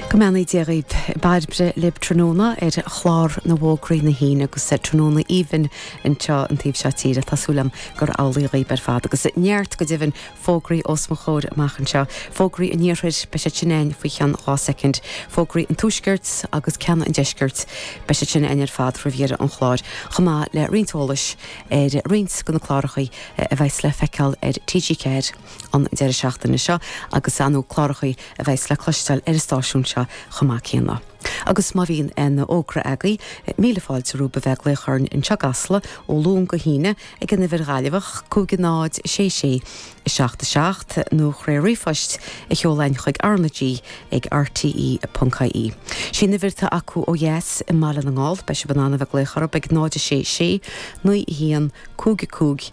Go mbeannaí Dia dhaoibh. Bairbre libh tráthnóna ar chlár na bhfógraí na hAoine agus tráthnóna aoibhinn anseo an taobh seo tíre. Tá súil agam gur amhlaidh dhíbh ar fad. Agus neart, go deimhin, fógraí os mo chomhair amach anseo. Fógraí an Iarthair, beidh siad sin a'inn faoi cheann dhá soicind. Fógraí an Tuaiscirt agus ceanna an Deiscirt, beidh siad sin a'inn ar fad roimh dheireadh an chláir. Chomh maith le roinnt eolais ar roinnt de na cláracha a bheas le feiceáil ar TG4. an deireadh seachtaine seo agus ar na cláracha a bheas le cloisteáil ar an stáisiún seo chomh maith céanna. Agus má bhíonn an fhógra agaí, míle fáilte romhaibh a bheith ag glaoch orainn anseo i gCasla ó Luan go hAoine ag an uimhir Ghaillimheach, 506 677, nó trí ríomhphost a sheoladh chuig R na G ag RTÉ.ie. Is í an uimhir atá acu ó dheas i mBaile na nGall. Beidh sibh in ann a bheith glaoch orthu ag 0 6 6 9 1 5 5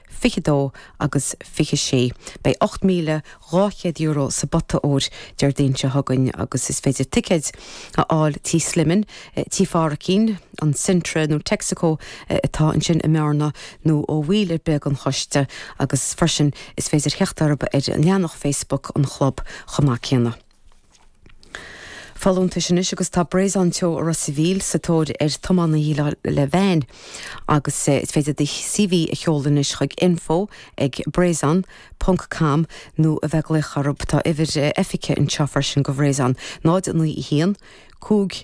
22 agus 26. Beidh €8,200 sa bpota óir Déardaoin seo chugainn agus is féidir ticéid a fháil Tí Slimane, Tí Pháraicín, an Centre nó Texaco atá ansin i mBearna nó ó bhall ar bith den choiste agus freisin is féidir theacht orthu ar leathanach Facebook an chlub chomh maith céanna. folúntais anois agus tá Brezhon Teo i Ros a' Mhíl sa tóir ar thiománaí héille veain agus is féidir do CV a sheoladh anois chuig info ag brezhon ponc com nó a bheith ag glaoch orthu. Tá uimhir oifige anseo freisin go Bhrezhon, 091 5.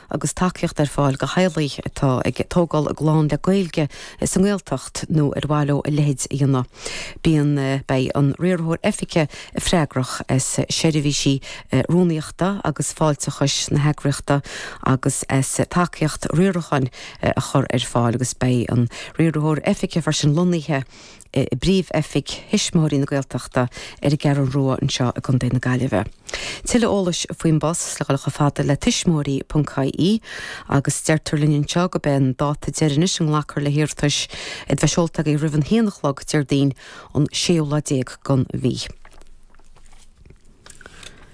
agus tacaíocht ar fáil do theaghlaigh atá ag tógáil a gclann le Gaeilge sa nGaeltacht nó ar mhaith leo a leithéid a dhéanamh. Bíonn, Beidh an Riarthóir Oifige freagrach as seirbhísí rúnaíochta agus fáilteachais na heagraíochta agus as tacaíocht riaracháin a chur ar fáil agus beidh an Riarthóir Oifige freisin lonnaithe i bpríomh-oifig Thuismitheoirí na Gaeltachta ar an gCeathrú Rua anseo i gContae na Gaillimhe. Tuilleadh eolais faoin bpost le fáil chomh fada le tuismitheoirí.ie agus deirtear linn anseo gurb é an dáta deireanach a nglacfar le hiarratais iad a bheith seolta agaibh roimh an haon a chlog Déardaoin an séú lá déag den mhí.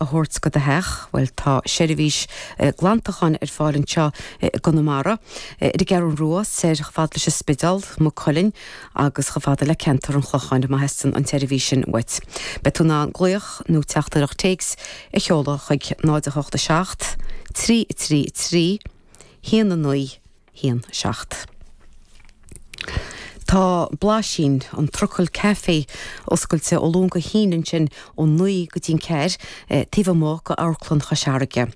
a thabhairt go do theach. Bhuel, tá seirbhís glantacháin ar fáil anseo i gConamara. Ar an gCeathrún Rua, soir chomh fada leis an Spidéal, Maigh Cuilinn, agus chomh fada le ceantar an Chlocháin, má theastaíonn an tseirbhís sin uait. Beidh tú in ann glaoch nó teachtaireacht téacs a sheoladh chuig 08 7 3 3 3 1 9 1, 7. Tá Blaisín an trucail caife oscailte ó Luan go hAoine ansin ó naoi go dtí'n ceathair taobh amuigh go Amharclann Chois Fharraige.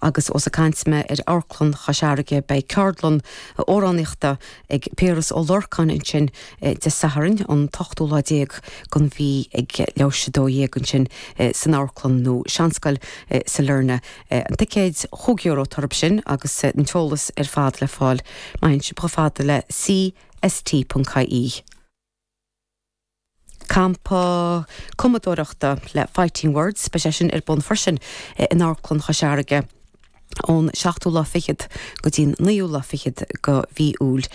Agus ós ag caint mé ar Amharclann Chois Fharraige beidh ceardlann amhránaíochta ag Piaras Ó Lorcáin ansin Dé Sathairn an t-ochtú lá déag den mhí ag leathuair tar éis 12 ansin san amharclann nó seanscoil Sailearna na ticéid chúig euro atá orthu sin agus an t-eolas ar fad le fáil má théann sibh chomh fada le CST.ie. Campa cumadóireachta le Fighting Words beidh sé sin ar bun freisin in Amharclann Chois Fharraige ón seachtú lá fichead go dtí an naoú lá fichead go mhí Iúil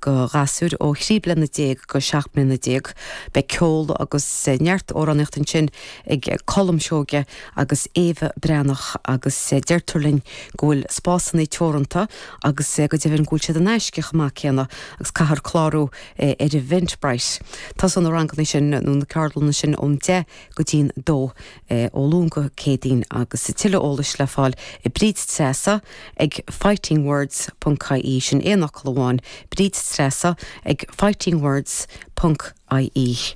go ghasúir ó thrí bliana déag go seacht mbliana déag Beidh ceol agus neart amhránaíocht ansin ag Colm Seoige agus Éabha Breathnach agus deirtear linn go bhfuil spásanna teoranta agus go deimhin go bhfuil siad in aisce chomh maith céanna agus caithfear clárú ar Eventbrite. Tosaíonn na ranganna sin, nó na ceardlanna sin ón deich go dtí'n dó ó Luan go Céadaoin agus tuilleadh eolais le fáil ag Bríd Treasa ag fightingwords.ie, sin aon fhocal amháin, Bríd Treasa ag fightingwords.ie.